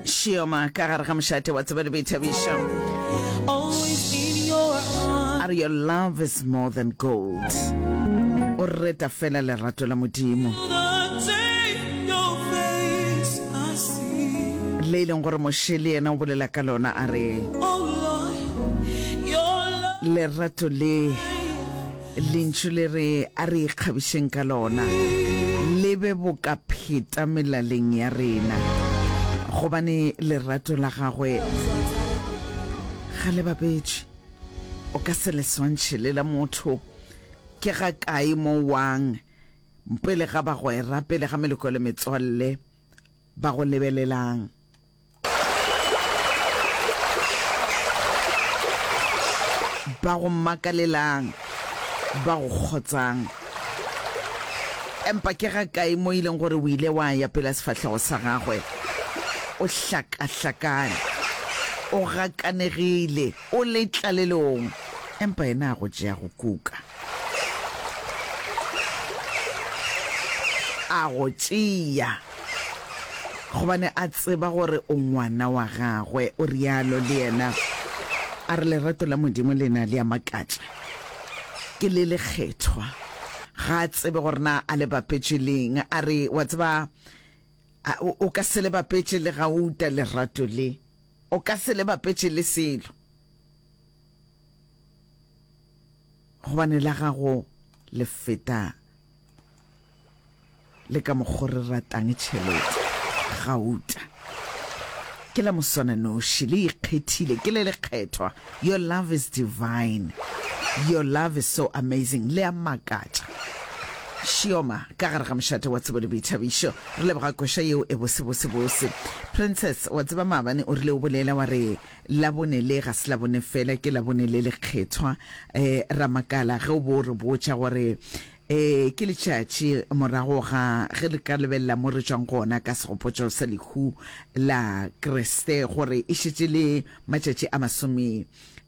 Shioma ka gare ga mošate wa tseba le boithabišo are your love is more than gold o reta fela lerato la modimo le e leng gore moše le yena o bolela ka lona a re lerato le Lentšu le re a re ikgabišeng ka lona le be boka pheta melaleng ya rena, gobane lerato la gagwe ga le bapetše. O ka se le swantšhe le la motho. Ke ga kae mo wang pele ga bagwera, pele ga meloko le metswalle ba go lebelelang? ba go makalelang, ba go kgotsang. Empa ke ga kae mo ileng gore o ile wa ya pela sefahlego sa gagwe o hlakahlakane, o gakanegile? O le tlalelong, empa yena a go tšea go kuka. A go tšea, gobane a tseba gore o ngwana wa gagwe, o realo le yena. A re lerato la Modimo le na le a makatša. Ke le lekgethwa. Ga a tsebe gore na a le bapetše leng. A re, wa tseba, o ka se le bapetše le gauta lerato le. O ka se le bapetše le selo, gobane la gago le feta le ka mokgo re ratang tšhelete. Gauta ke la moswananoši, le ikgethile, ke le lekgethwa, Your love is divine Your love is so amazing Le a makatša Shioma ka gare ga mošate wa tsebo le boithabišo Re leboga koša yeo e bose bose bose Princess wa tseba maabane o rile o bolela wa re Labone le ga se Labone fela ke Labone le lekgethwa eh, Ra makala ge o bo re botša gore Ee, ke letšatši morago ga ge re ka lebelela mo re tšwang gona ka segopotšo sa lehu la Kriste gore e šetše le matšatši a masome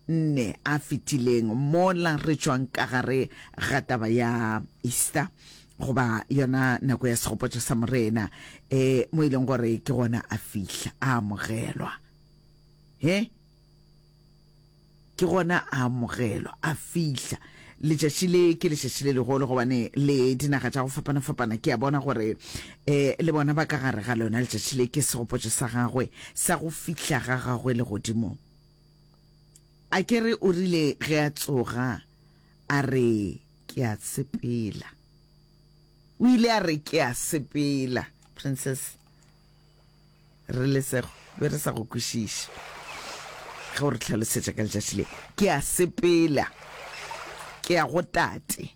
nne a fetileng mola re tšwang ka gare ga taba ya Easter goba yona nako ya segopotšo sa Morena e mo e leng gore ke gona a fihla a amogelwa. He? ke gona a amogelwa a fihla letšatši le ke letšatši le legolo gobane le dinaga tša go fapana-fapana ke a bona gore um le bona ba ka gare ga lona letšatši le ke segopotšo sa gagwe sa go fihla ga gagwe le godimong a ke re o rile ge a tsoga a re ke a sepela o ile a re ke a sepela princess Re lesego be re sa go kwešiše ge o re hlalosetša ka letšatši le. Ke a sepela, ke ya go Tate,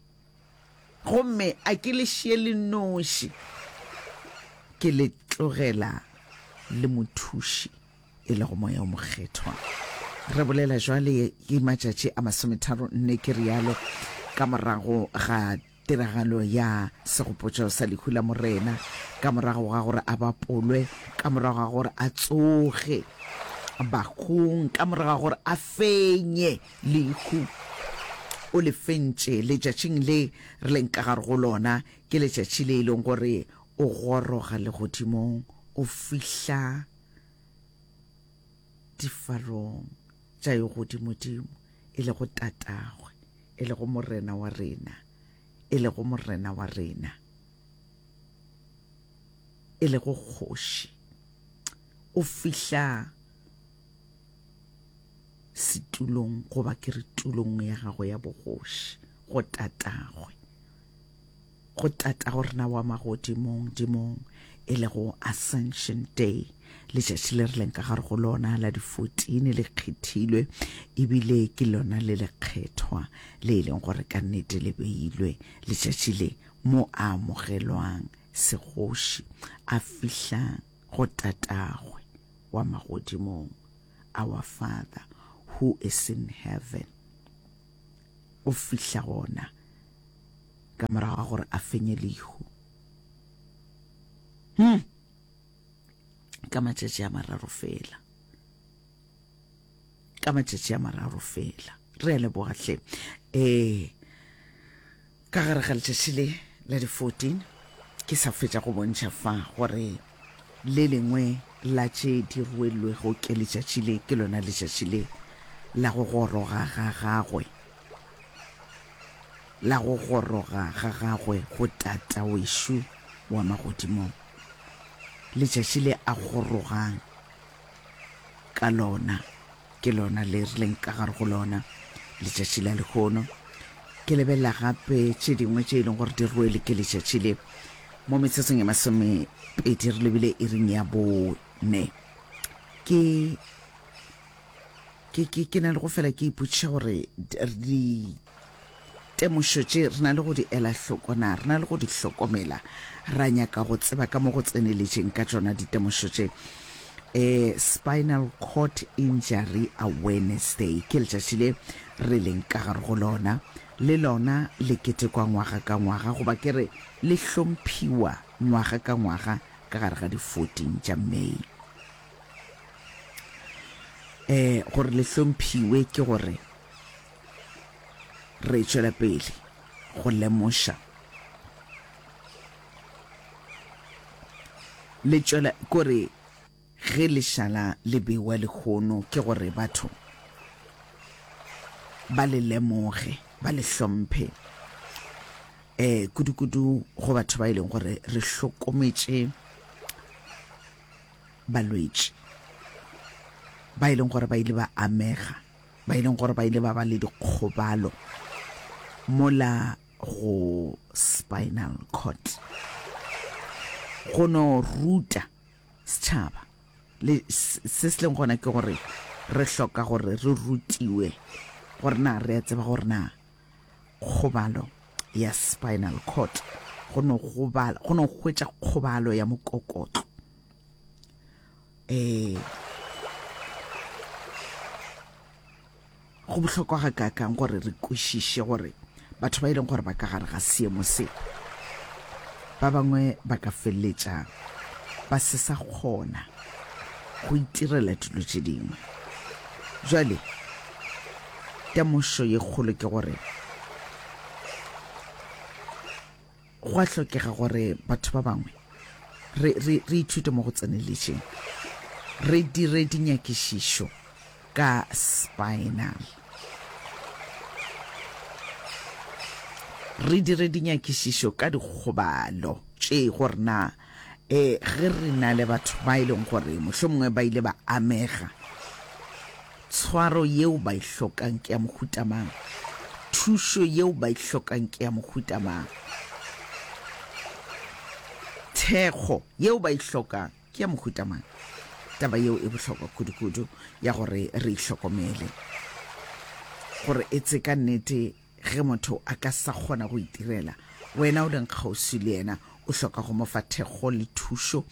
gomme a ke le šie le noši, ke le tlogela le Mothuši, e lego Moya o Mokgethwa. Re bolela bjale, ke matšatši a masometharo nne ke realo ka morago ga. Tiragalo ya Segopotšo sa lehu la Morena, ka morago ga gore a bapolwe, ka morago ga gore a tsoge bahung, ka morago ga gore a fenye lehu, o le fentše letšatšing le re leng ka gare go lona. Ke letšatši le e leng gore o goroga legodimong, o fihla difarong tša yo godimodimo, e lego Tatagwe, e lego Morena wa rena, e lego Morena wa rena, e lego Kgoši, o fihla setulong goba ke re tulong ya gago ya bogoši go Tatagwe. go tata go rena wa magodimong dimong e lego Ascension Day letšatši le re leng ka gare go lona la di-14 le kgethilwe ebile ke lona le lekgethwa le e leng gore ka nnete le beilwe letšatši le mo a amogelwang segoši a fihla go tatagwe wa magodimong our father who is in heaven go fihla gona ka morago ga gore a fenye lehu hmm. ka matšatši a mararo fela ka matšatši a mararo fela re a lebogatlhe um eh, Ka gare ga letšatši le la di 14 ke sa fetša go bontšha fa gore le lengwe la tše di ruellwego ke letšatši le ke lona letšatši le la go goroga ga gagwe, la go goroga ga gagwe go Tata wešo wa magodimong, letšatši le a gorogang. ka lona ke lona le re leng ka gare go lona letšatši la lekgono ke lebelela gape tše dingwe tše e leng gore di rwele ke letšatši le mo metsotsong ya masomepedi re lebile e reng ya bone ke ke ke ke na le go fela ke ipotšiša gore di Temošo tše re na le go di ela hloko na re na le go di hlokomela? Ra nyaka go tseba ka mo go tseneletšeng ka tšona ditemošo tše. E, Spinal Cord Injury Awareness Day ke letšatši le re leng ka gare go lona. Le lona le ketekwa ngwaga ka ngwaga, goba ke re le hlomphiwa ngwaga ka ngwaga ka gare ga di 14 tša May. E, gore le hlomphiwe ke gore Re tšwela pele go lemoša le tšwela kore ge lešala le bewa lehono ke gore batho ba le lemoge ba le hlomphe um kudu-kudu go batho ba e leng gore re hlokometše balwetši ba e leng gore ba ile ba amega ba e leng gore ba ile ba ba le dikgobalo mola go spinal cord go no ruta setšhaba le se se leng gona ke gore re hloka gore re rutiwe gore na re a tseba gore na kgobalo ya spinal cord go no hwetša kgobalo ya mokokotlo ee go bohlokwa ga kakang gore re kwešiše gore batho ba e leng gore ba ka gare ga seemo se ba bangwe ba ka feleletša ba se sa kgona go itirela dilo tše dingwe jale temošo ye kgolo ke gore Go a hlokega gore batho ba bangwe re, re, re ithute mo go tseneletšeng, re dire dinyakišišo ka spinal, re dire dinyakišišo ka dikgobalo tše, gore na E, ge re na le batho ba e leng gore mohlomongwe ba ile ba amega, tshwaro yeo ba e hlokang ke ya mohuta mang? Thušo yeo ba e hlokang ke ya mohuta mang? Thekgo yeo ba e hlokang ke ya mohuta mang? Taba yeo e bohlokwa kudu-kudu ya gore re itlhokomele gore e tse ka nnete Ge motho a ka sa kgona go itirela, wena o leng kgauswi le yena o hloka go mo fa thekgo le thušo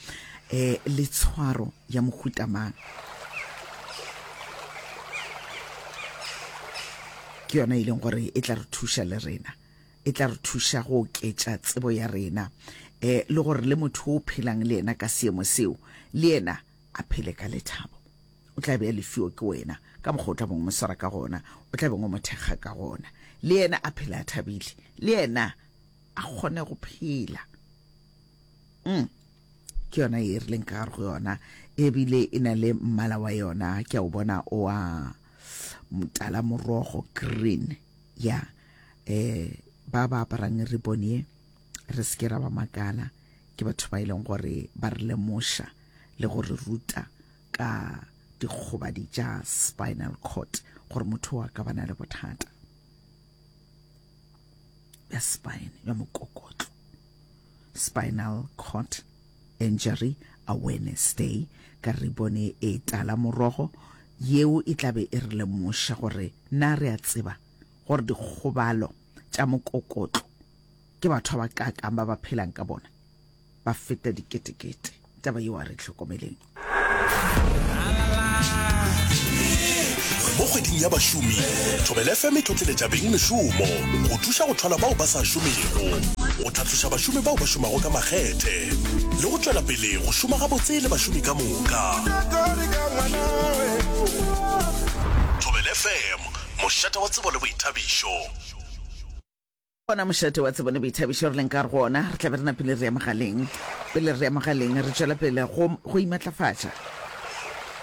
um le tshwaro ya mohuta mang? Ke yona e leng gore e tla re thuša le rena, e tla re thuša go oketša tsebo ya rena um le gore le motho o phelang le yena ka seemo seo le yena a phele ka lethabo. O tla be a lefio ke wena ka mokgwa o tla beng o mo swara ka gona, o tla beng o mo thekga ka gona. Le yena a phele a thabile, le yena a kgone go phela. Mm. ke yona e rileng ka gare go yona ebile e na le mmala wa yona ke a o bona oa motala morogo green ya um ba ba aparang ribone e re se ke ra ba makala ke batho ba e leng gore ba re lemoša le go re ruta ka dikgobadi tša spinal cord gore motho wa ka bana le bothata ya spine ya mokokotlo spinal cord injury awareness day ka re bone e tala morogo yeo e tlabe e re lemoša gore na re a tseba gore dikgobalo tša mokokotlo Ke batho ba bakaakang ba ba phelang ka bona? Ba feta diketekete. Taba yeo a re tlhokomeleng. Mo kgweding ya bašomi, Thobela FM e tlotleletša beng mešomo go thuša go thwala bao ba sa šomego, go tlhatloša bašomi bao ba šomago ka makgethe le go tšwela pele go šoma gabotse le bašomi ka moka. Thobela FM, mošate wa tsebo le boithabišo. Gona mošate wa tsebo le boithabišo re leng ka go ona, re tla be re napile re ya mogaleng. Pele re ya mogaleng, re tšwela pele go, go imatlafatša,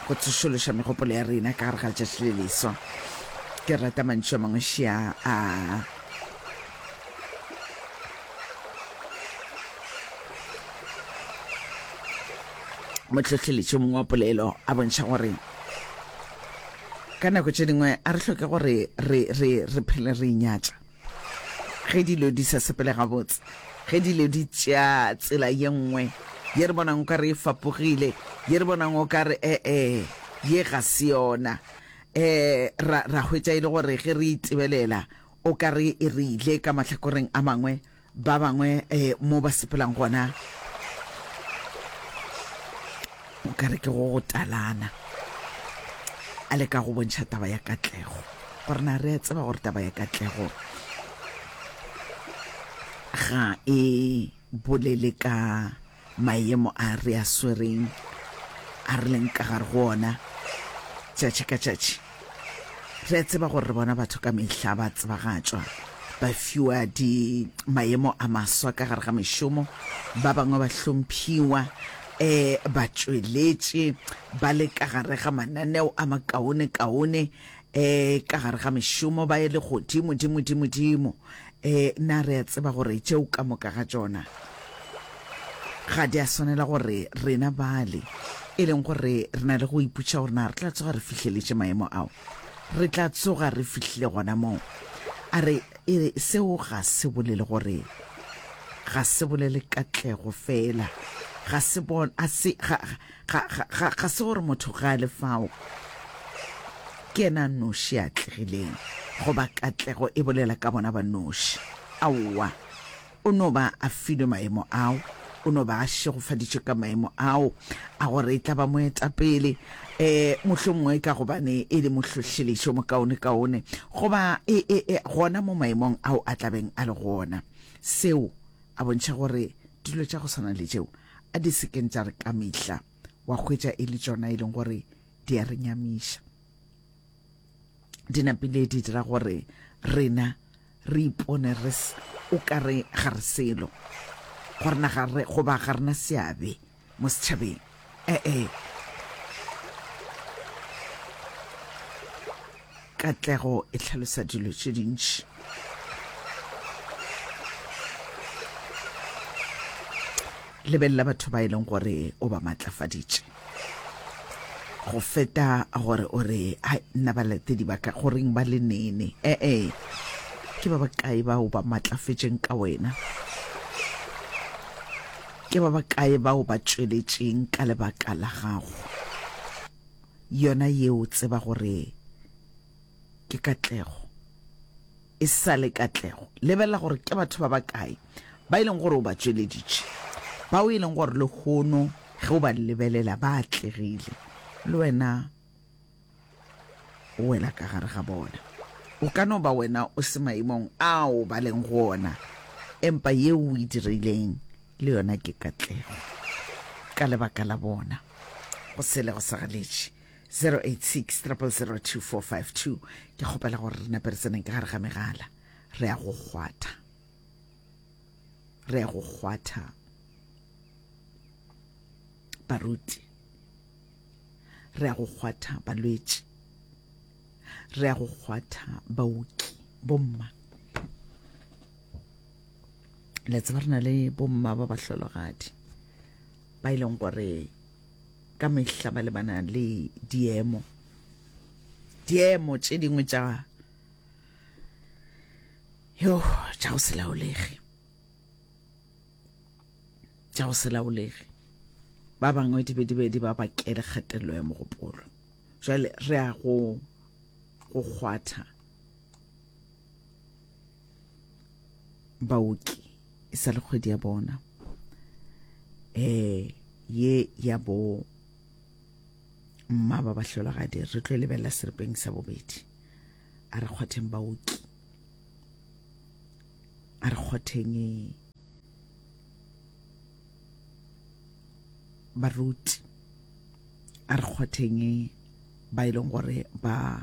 go tsošološa megopolo ya rena ka gare ga letšatši le leswa. Ke rata mantšu a mangwe šia a. mohlohleletši mongwe wa polelo a bontšha gore ka nako tše dingwe a re hloke gore re, re, re phele re inyatša Ge dilo di sa sepele gabotse, ge dilo di tšea tsela ye nngwe ye re bonang o ka re e fapogile, ye re bonang o ka re ee, ye ga se yona, um ra, ra hwetša e le gore ge re e tebelela o ka re e re ile ka mahlakoreng a mangwe, ba bangwe eh, mo ba sepelang gona o ka re ke go go talana a le ka go bontšha taba ya katlego gore na re a tseba gore taba ya katlego ga e bolele ka Maemo a re a swereng, a re leng ka gare go ona tšatši ka tšatši. Re a tseba gore re bona batho ka mehla ba tsebagatšwa, ba fiwa di maemo a maswa ka gare ga mešomo, ba bangwe ba hlomphiwa, um batšweletši ba le ka gare ga mananeo a makaone-kaone, E, ka gare ga mešomo ba ele godimo, dimo, dimo, dimo. E, na re a tseba gore tšeo ka moka ga tšona ga di a swanela gore rena bale, e leng gore re na le go iputša gore na re tla tsoga re fihleletše maemo ao. Re tla tsoga re fihlile gona moo. A re, e, seo ga se bolele gore ga se bolele katlego fela, ga se bon, a se, ga, Ga, ga, ga, ga se gore motho ga a le fao ke ena noši a tlegileng goba katlego e bolela ka bona ba noši. Aowa, o no ba a filwe maemo ao, o no ba a šegofaditšwe ka maemo ao a gore e tla ba moetapele, um eh, mohlomongwe ka gobane e le mohlohlelešo mokaonekaone goba e, e, e, gona mo maemong ao a tlabeng a le gona. Seo a bontšha gore dilo tša go swana le tšeo a di se keng tša re ka mehla wa hwetša e le tšona e leng gore di a re nyamiša di napile di dira gore rena re ipone re o ka re ga re selo gore na ga re goba ga rena seabe mo setšhabeng ee eh, eh. Katlego e tlhalosa dilo tše dintši. Lebelela batho ba e leng gore o ba matlafaditše go feta gore o re hai nna balatedi ba ka goreng ba le nene ee ke ba bakae bao ba matlafetseng ka wena ke ba bakae bao ba tšweletšeng ka lebaka la gago yona yeo tseba gore ke Katlego e sa le Katlego lebelela gore ke batho ba bakae ba e leng gore o ba tšweleditše bao e leng gore le hono ge o ba lebelela ba atlegile le wena o wela ka gare ga bona o ka no ba wena o se maemong ao ba leng go ona empa yeo o e dirileng le yona ke Katlego ka lebaka la bona go sele go sagaletše 086 002452 ke kgopela gore re nape re tseneng ka gare ga megala re ya go kgwatha re ya go kgwatha baruti re ya go kgwatha balwetši re ya go kgwatha baoki bomma le tseba re na le bomma ba bahlologadi ba e leng gore ka mehla ba lebana le diemo diemo tše dingwe tša yo tša go se laolege tša go se laolege ba bangwe di be di be di ba bakele kgatelelo ya mogopolo jale re a go go kgwatha baoki e sa le kgwedi ya bona eh ye ya bo mma ba bahlolagadi re tlo e lebelela seripeng sa bobedi a re kgwatheng baoki a re kgwatheng baruti a re kgwatheng ba e leng gore ba